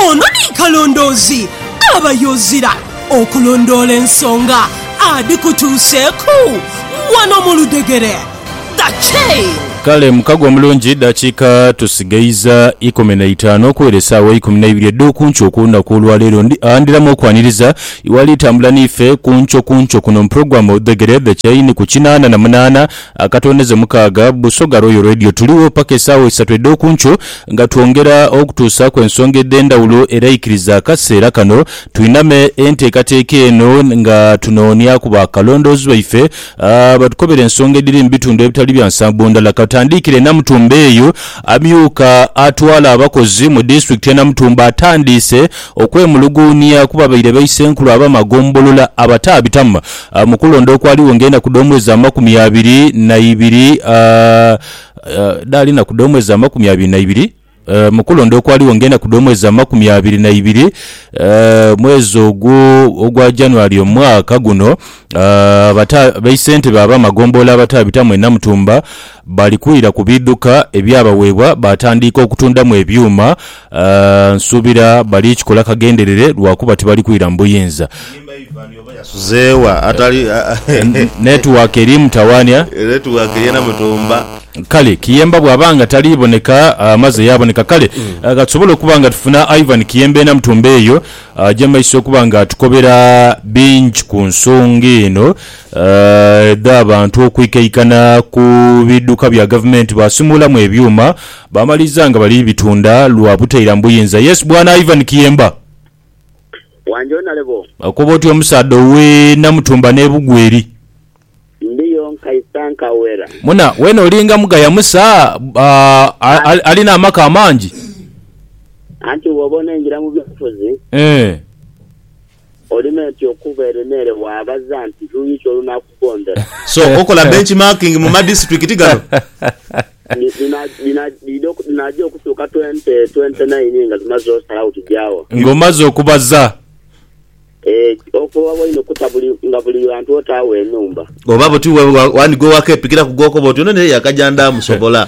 Ono ni kalondoozi aba yozira okulondoola ensonga adhikutuuseeku wano mu ludhegere. The Chain. Kale mukago omulungi dakiika tusigaiza ikumi na itaanu okuwera esaawa eikumi na ibiri edhokunkyo kulunaku olwaleero ndiramu okwaniriza iwali tambula niife kunkyo kunkyo kuno mu program Oludhegere The Chain ku kinaana na munaana Akatondeze mukaaga, Busoga Royal Radio. Tuligho paka esaawa isatu edh'okunkyo nga twongera okutuusaaku ensonga edh'endhawulo era ikiriza akaseera kano twiname enteekateeka eno nga tunoonyaku ba kalondoozi baife batukobere ensonga edhiri mu bitundu ebitali bya nsambo ndala. Katandiikire Namutumba eyo, amyuka atwala abakozi mu disitulikiti ye Namutumba atandiise okwemuluguunia ku babaire baisenkulu abamagombolola abataabitamu A Mu kulonda okwaligho ng'enaku dh'omwezi amakumi abiri na ibiri, a Dhaali enaku dh'omwezi amakumi abiri na ibiri. A Mu kulonda okwaligho ng'enaku dh'omwezi amakumi abiri na ibiri, a mwezi ogwo ogwa January omwaka guno, a abata baisentebe ab'amagombolola abataabitamu e Namutumba bali kwira ku biidhuka ebyabaweebwa baatandiika okutundamu ebyuma Nsuubira bali kikola kagenderere lwa kuba tibali kwira mu buyinza. Enimba Ivan oba yasuze wa atali. Netiwaaka eri mutawaanhia. Netiwaaka yeena mutumba. Kale Kiyemba bw'aba nga tali boneka amaze yaaboneka. Kale ka tusobole okuba nga tufuna Ivan Kiyemba eena mutumba eyo aje mu maiso okuba nga atukobera bingi ku nsonga eno edh'abantu okwikaikana ku bidhuka bya Gavumenti baasimuulamu ebyuma Baamaliza nga bali bitunda lwa butailamu buyinza. Yes bwana Ivan Kiyemba. Wangi onale boo. Okoba otya omusaadha owe Namutumba ne Bugweri. Ndiyo nkaisa nkawera. Muna, wena olinga mugaya Musa aah alina amaka amangi. Anti bwoba onengira mu byobufuzi. Eeh. Olimenti okuva ere n'ere waabaza nti, Luuyi ki olunaakugondera? So okola benchmarking mu madisiturikiti gano? Dhi, dhina, dhina, dhidha oku, dhinaja okutuuka twente, twente naini nga tumaze osalagho tuja wa? Nga omaze okubaza. Eeh, ofuba bwa inho okuta buli, nga buli ghantu otaagho enhumba. Oba buti, wa, wa, wandhigwa ewaka epikiraku gw'okoba oti, Ono naye yakaja ndaamusobola.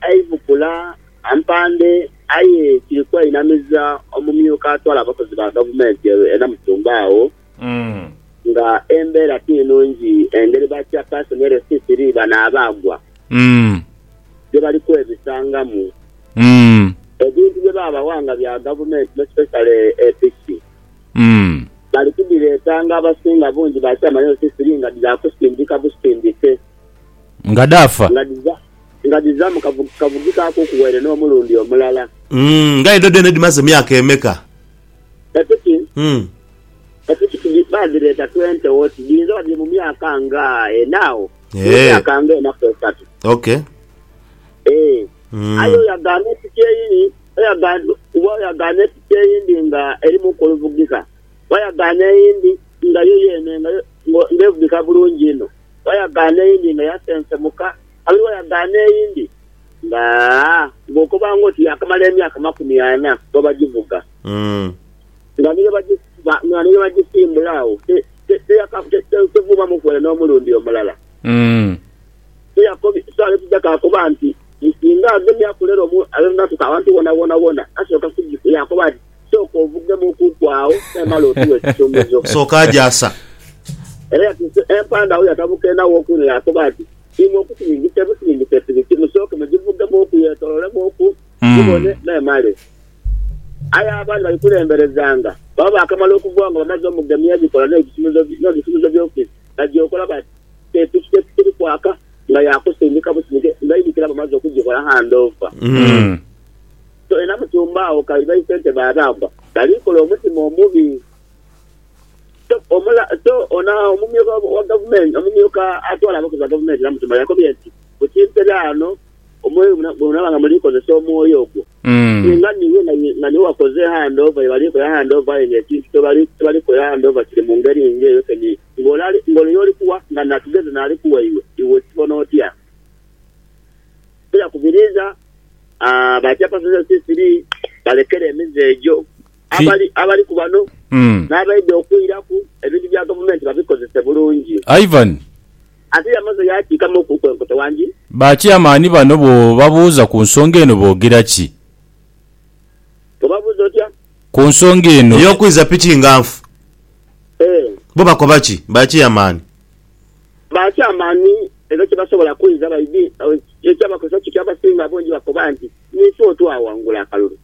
Aibukula ampande aye kiri kweinamiza omumyuka atwala abakozi ba gavumenti e Namusumba agho nga embeera ti nnungi engeri ba Chairperson Elsie Siriiba n'abaagwa gye bali kwebisangamu ebintu bye baabawa nga bya gavumenti most especially e piki bali kudhireeta nga abasinga bungi ba Chairman Elsie Siriiba nga dhaakusindika busindike nga dhaafa. nga dhiza mu kavugi ka kuku waire n'omulundi omulala. Umm, nga edho dheene dhimaze myaka emeka? Epiki, Umm. Epiki tidhi, baadhireeta twente wo, tidhiinza oba dhiri mu myaka nga ena agho, dhiri mu myaka nga ena ku esatu. Ok. Eeh. Aye Umm. oyagaana epiki eyiyi, oyagaana, kuba oyagaana epiki eyindi nga erimu ku oluvugika, wayagaana eyindi nga yo yeene nga yo, nga evugika bulungi inho. wayagaana eyindi nga yasensemuka, kabiri wayagaana eyindi nga bwokoba nga oti yaakamala emyaka makumi ana bwe bagivuga. Nga ni bwe bagisimbula agho, tevuubamuku ere n'omulundi omulala. So aye tija kaakoba nti, Singa agemya kulera abe nga atuuka awantu wona wona, asooka kugikuba yaakoba ati, Sooka ovugemu okuku agho memale otuwe ekisumuzo. Sooka agyasa. Era yatuuse empanda agho yatabuka enha w'okuku ng'akoba ati, Imwe okusiringisa ebisiringisa epiriti, musooke mugivugemu oku yeetololemu oku gibone memale. Aye abaali bagikuremberezanga baba baakamala okugwagho nga bamaze omugemia ebikola n'ebisumuzo by'ofiisi, bagyekola bati, Kye piki kye kikiri kwaka nga ya kusindika busindike, nga idhukira bamaze okugikola handover. So era musumba agho kabi baisente b'abaanba bali kola omutima omubi. So omula, so ono omumyuka wa gavumenti, omumyuka atwala abakozi ba gavumenti Namutumba yakobye nti, Ku kimpera ano omwoyo bwe munaaba nga muli kozesa omwoyo ogwo, singa niiwe nga ni, nga niiwe wakoze handover ye bali kola handover aye nga ekintu kye bali, kye bali kola handover kiri mu ngeri ng'eyo kyeniri, ng'ole ali, ng'ole y'oli kuwa nga natugeze n'ali kuwa iwe, iwe okibona otya? Sila kubiriza ah, ba chairperson ba CCD balekere emize egyo. Ki- Abali abali ku bano Mm. n'abaidha okwiraku ebintu bya gavumenti babikozese bulungi. Ivan, Ate yamaze yaakiikamu okuku enkoto wangi. ba chairman bano bw'obabuuza ku nsonga eno boogera ki? Bw'obabuuza otya? Ku nsonga eno. Ey'okwiza piki nga nfu. Eh. Bo bakoba ki ba chairman? baakya amaani era tibasobola kwinza baidhi. Ekyabakosa kiki? Abasinga abangi bakoba nti, Ni ife otwawangula akalulu.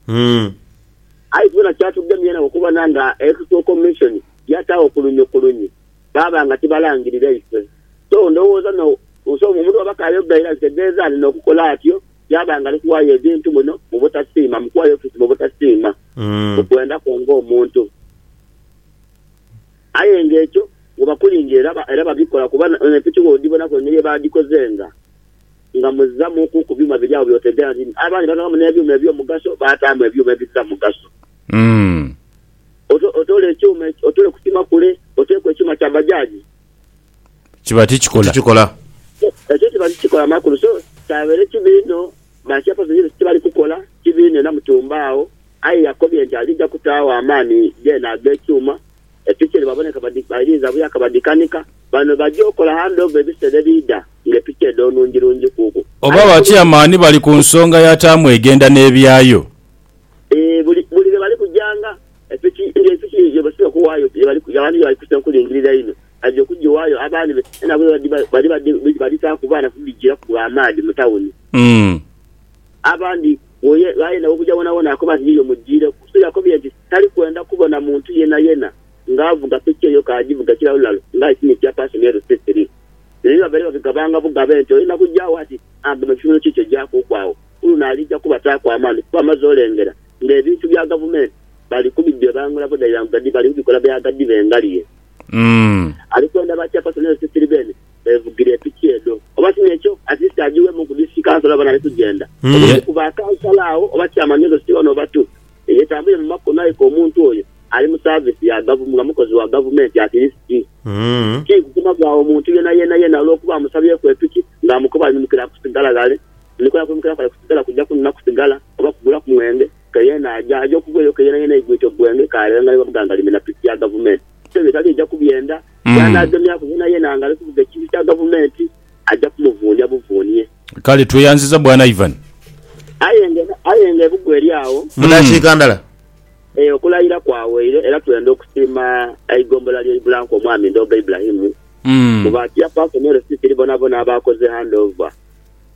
Aye tubona kyatugemye enagho okubona nga Electoral Commission yataagho kulunye ku lunye baaba nga tibalangirira ife. So, ndowooza no, so omuntu bw'aba k'ayogera era kitegeeza alina okukola atyo yaaba ng'ali kuwaayo ebintu muno mu butasiima, mu kuwaayo ofiisi mu butasiima, mu kwenda kwe ng'omuntu. Aye nga ekyo webakulinga era babikola kuba n'empiki bwodhibonaku engeri yebaadhikozenga nga muzzamuuku ku byuma biri agho by'otegeera nti abaami baaghamu n'ebyuma eby'omugaso baataamu ebyuma ebizira mugaso. Otoole ekyuma, otoole ku kima kule oteeku ekyuma kya bajaji. Kiba tikikola. Ekyo kiba tikikola makulu so kyabeere kibi inho, ba chairperson ekyo kyebali kukola kibi inho era mutuumbe agho. Aye yakobye nti alija kutaagho amaani geene ag'ekyuma, epiki edhibaboneka badhipailiiza buya kabadhikanika, bano baja okola handover ebiseera ebiidha nga epiki edho nungi-lungi kuku. Oba abakyamaani bali ku nsonga ya taamu egenda n'ebyayo? Eeh buli buli lwe bali kujanga, epiki nga epiki yebasinga okuwaayo ye bali abantu ye bali kusenkulingirira einho, baja okugiwaayo abandi be e nabwe bali badhi badhitaaku baana kudhijiiraku bwa maadhi mu tawuni. Abandi. Oyo ghayenda okugya wonawona akoba nti yiyo mujiireku. So yakobye nti tali kwenda kubona muntu yenayena nga avuga piki eyo ka ajivuga kilalulalo nga aye si ni chairperson e Rusiisi rii. Bino ni babaire babigabanga bugabe nti oyenda kugya agho ati agema ekisumiro kiikyo gyakuuku agho. Ku luno alija kubataaku amaani kuba amaze olengera nga ebintu bya Gavumenti bali kubidhebangula budhairangudhadhi bali kubikola byaghadhi bengaliye. Ali kwenda ba chairperson e Rusiisi rii beene. beevugira epiki edho. Oba si n'ekyo, at least agiweemu ku Disituliki Council oba n'ali kugyenda. Oba omu ku ba Councillor agho oba Chairman edho si one oba two eyetambulire mu makubo n'aika omuntu oyo ali mu service ya Gavt nga mukozi wa Gavumenti at least. Ti kukoma gho agho muntu yeena yeena yeena olw'okuba amusabyeku epiki ng'amukoba aimukira ku sigala ghale. Nkola ya kwimukira kwale ku sigala kuja kunona ku sigala oba kugulaku mwenge. Ke yeena aja, aja okugwa eyo ke yeena yeena eigwite ogwenge k'aleeghangaire bamugangalime na piki ya Gavumenti. Sso ebyo etali eja kubyenda. Bw'anaagemyaku yeenayeena nga ali kuvuga ekintu kya gavumenti, aja kumuvuunia buvuunie. Kale tweyanziza Bwana Ivan. Aye nga aye nga ebugo eri agho. Mu dakiika ndala. E, okulayira kwaweire, era twenda okusiima eigombola ly'e Ibulanku Omwami Ndooga Ibrahim, kuba tiyafaaku ne receipt eri bonabona aba akoze handover.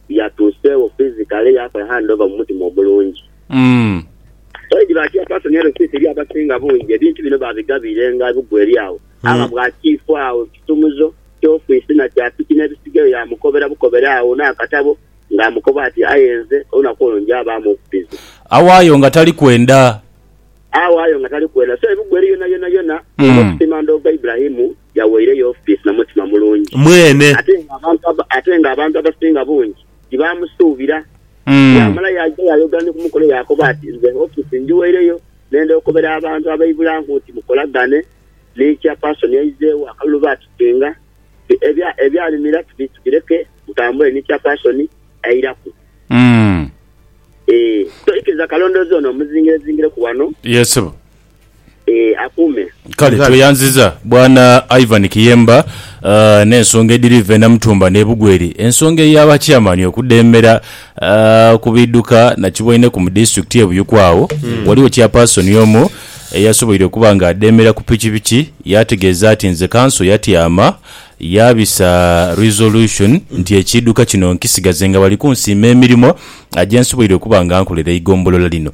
yatuuseegho physically yaakola hand over mu mutima omulungi. Already ba chairperson LCC eri abasinga bungi ebintu bino babigabiire nga ebugwa eri agho agha bwa chief agho ekisumuzo kya office na kya piki n'ebisigaire yaamukobera bukobere agho n'akatabo nga amukoba ati aye nze olunaku olwo ngyabaamu okupiza. Awaayo nga tali kwenda. Awaayo nga tali kwenda. So ebugwa eri yonayonayona, olina okusiima ndoogo Ibrahim. yaweire Yofisi na mutima mulungi. Mwene. Ate nga abantu aba, ate nga abantu abasinga bungi tibaamusuubira. Yaamala yaaja yaayogera ni ku mukono yaakoba ati, Nze Yofisi njiweireyo nenda okobera abantu abaibula nku nti mukolagane ni Chairperson aizeewo akalulu baatusinga nti ebya, ebyaalimira tubi, tubireke mutambule ni Chairperson airaku. Ee, so ikiriza kalondoozi ono omuzingirezingireku wano. Yee, ssebo. akuume. Kale tweyanziza bwana Ivan Kiyemba n'ensonga edhiri iva e Namutumba n'e Bugweri. Ensonga eya ba chairman okudheemera ku bidhuka nakibwaineku mu disitulikiti e Buyuku agho ghaligho chairperson omu eyasoboire okuba nga adheemera ku pikipiki yaategeeza ati nze kanso yatyama yaabisa resolution nti ekiidhuka kino nkisigaze nga bali kunsiima emirimo gye nsoboire okuba nga nkolera eigombolola lino.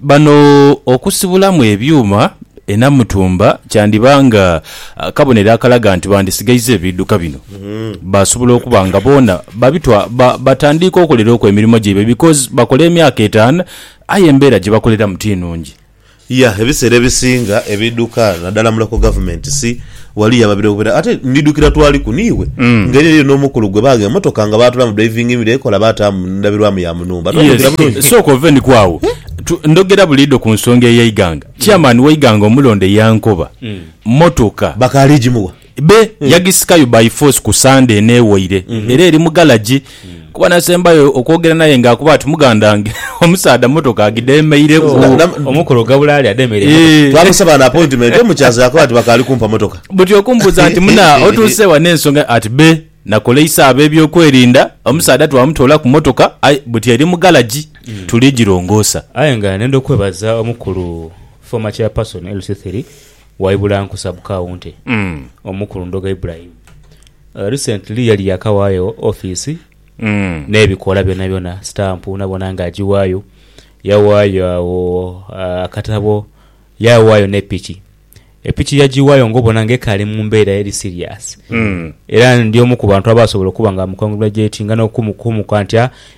Bano okusibulamu ebyuma e Namutumba kyandiba nga kabonero akalaga nti bandisigaiza ebiidhuka bino basobola okuba nga boona batandiika okolera oku emirimo gyaibwe because bakola emyaka etaanu aye embeera gye bakoleramu ti nnungi. Yah ebiseera ebisinga ebidhuka nadala muloko government si wali yababire obubera ate ndidhukira twaliku niiwe nga eriyo eriyo nomukulu gwe bagha emotoka nga batulamu driving mirror ekola bataamu ndabirwamu ya munumba twayogira bulungi. Yes sooka ove niku agho tu ndhogera buliidho ku nsonga eya Iganga. Chairman wa Iganga omulonde yankoba motoka. Bakaali jimuwa. Be yagisikayo by force ku Sunday eno ewaire era eri mu galagi kuba nasembayo okwogera naye nga akuba ati mugandange omusaadha motoka agidemeireku. Na- na- Omukulu Gabula ali ademeire emotoka. Eh. Twamusaba na appointment omukyaza yakoba nti bakaali kumpa motoka. Buti okumbuuza nti muna otuuse wa n'ensonga ati be nakoleisa ab'ebyokwerinda omusaadha twamutoola ku motoka aye buti eri mu galagi tuli girongoosa. Aye nga nenda okwebaza omukulu former chairperson LC3 Waibula nkusa bu kaunti omu ku Lundoga Ibrahim recently yali yakawayo office n'ebikola byonabyona, stamp nabona nga agiwayo. Yawayo agho akatabo, yawayo ne piki. Epiki yagiwayo nga obona nga ekaali mu mbeera eri serious era ndi omu ku bantu abaasobola okuba nga mu congratulatinga n'okumuka nti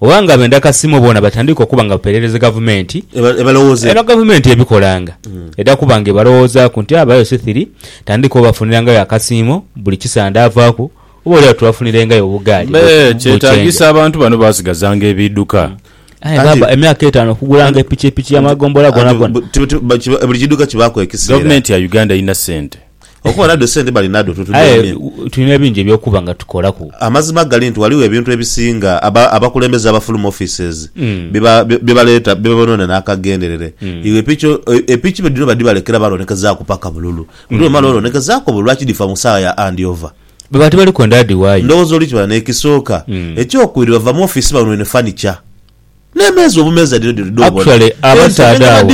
oba nga benda kasiimo boona batandike okuba nga bapereereze gavumenti eno gavumenti ebikolanga eda kuba nga ebalowoozaku nti abayo sithiri tandika obafunirangayo akasiimo buli kisande avaaku oba oli agho tubafunirengayo obugaali bu change. Mbe kyetagisa abantu bano basigazanga ebiduka? Aye baba emyaka etaano okugulanga epikipiki ya magombolola gonagona. Buli kiduka kibaaku ekisiira. Gavumenti ya Uganda erina sente. Okuba nadho esente bali nadho tutudeemye. Aye tulina bingi eby'okuba nga tukolaku. Amazima gali nti ghaligho ebintu ebisinga abakulembeze aba fuluma offices bye baleeta bye bonoona n'akagenderere. Iwe epiki epiki be dhino badhibalekera baalonekezaaku paka bululu. Buli lw'omala olonekezaako obwo lwaki dhifa mu saawa ya hand over? Baba tibali kwenda adhiwaayo. Ndhowooza oli kibala n'ekisooka. Eky'okubiri bava mu office banwune furniture. N'emeeza obumeeza dhino dhiri dh'obona. Actually abasaadha abo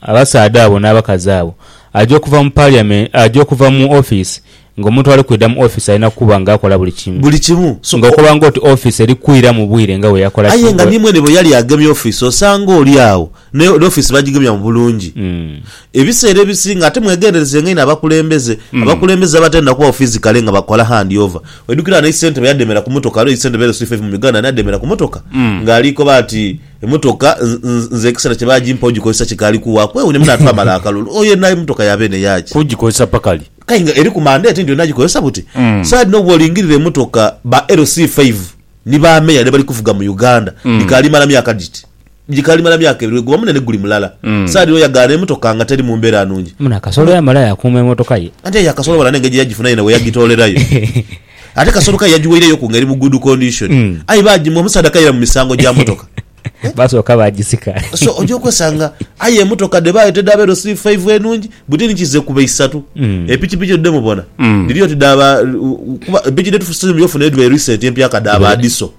abasaadha abo n'abakazi abo aja okuva mu parliament aja okuva mu office nga omuntu ali kwidha mu office alina kuba nga akola buli kimu. Buli kimu. So Nga okoba nga oti office eri kwira mu bwire nga bwe yakola aye nga ni mwene bwe yali agemye office osanga oli agho n'office bagigemya mu bulungi. Ebiseera ebisinga ate mwegenderezenga inho abakulembeze. Abakulembeze abatenda kubagho physically nga bakola hand over. Oidhukira ghano eyi ssentebe yademera ku motoka, ghaligho eyi ssentebe ere Swift FM mu Uganda ani ademera ku motoka nga ali koba ati emotoka nze ekiseera kye bagimpagho ogikozesa kikaali kuwa kwewuunya mune atwamala akalulu oyo yenha emotoka ya beene yaki? Kugikozesa paka li? Kale nga eriku mandate nti olina gikozesa buti? Saidi dhino bwolingirira emotoka ba LC Five ni ba Mayor dhe bali kuvuga mu Uganda dhikaali mala myaka dhiti? Gikalimala myaka ebiri weguba munene guli mulala. Saha dhino yagaana emotoka nga teri mumbera nungi. Muna Kasolo yamala yakuuma emotoka ye. Ante ya Kasolo bala nengeri gyeyagifuna yena weyagitoolerayo. Ate Kasolo kale yagiweireyo ku nga eri mu good condition. Aye bagimuwa omusaadha kayira mu misango gya motoka. Basooka bagisika. So oja okwesanga aye emotoka dhebaayo tedhaba edho siri faivu enungi buti ni kize kuba isatu. Epikipiki edho dhemubona dhiri oti dha ba kuba epiki dhetufunye ofuna edhibaire recent empyaka dha ba Adiso.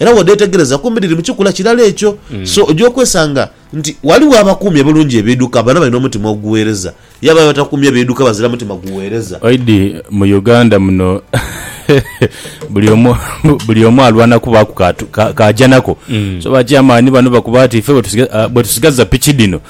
Era bw'odheetegereza kumpi dhiri mu kikula kirala ekyo. So, oja okwesanga nti ghaligho abakuumye bulungi ebiidhuka bano balina omutima ogugheereza, yabayo abatakuumye biidhuka bazira mutima gugheereza. Oidhi mu Uganda muno buli omu buli omu alwana kubaaku k'aja nako. So ba chairman bano bakuba ati ife bwetusigaza piki dhino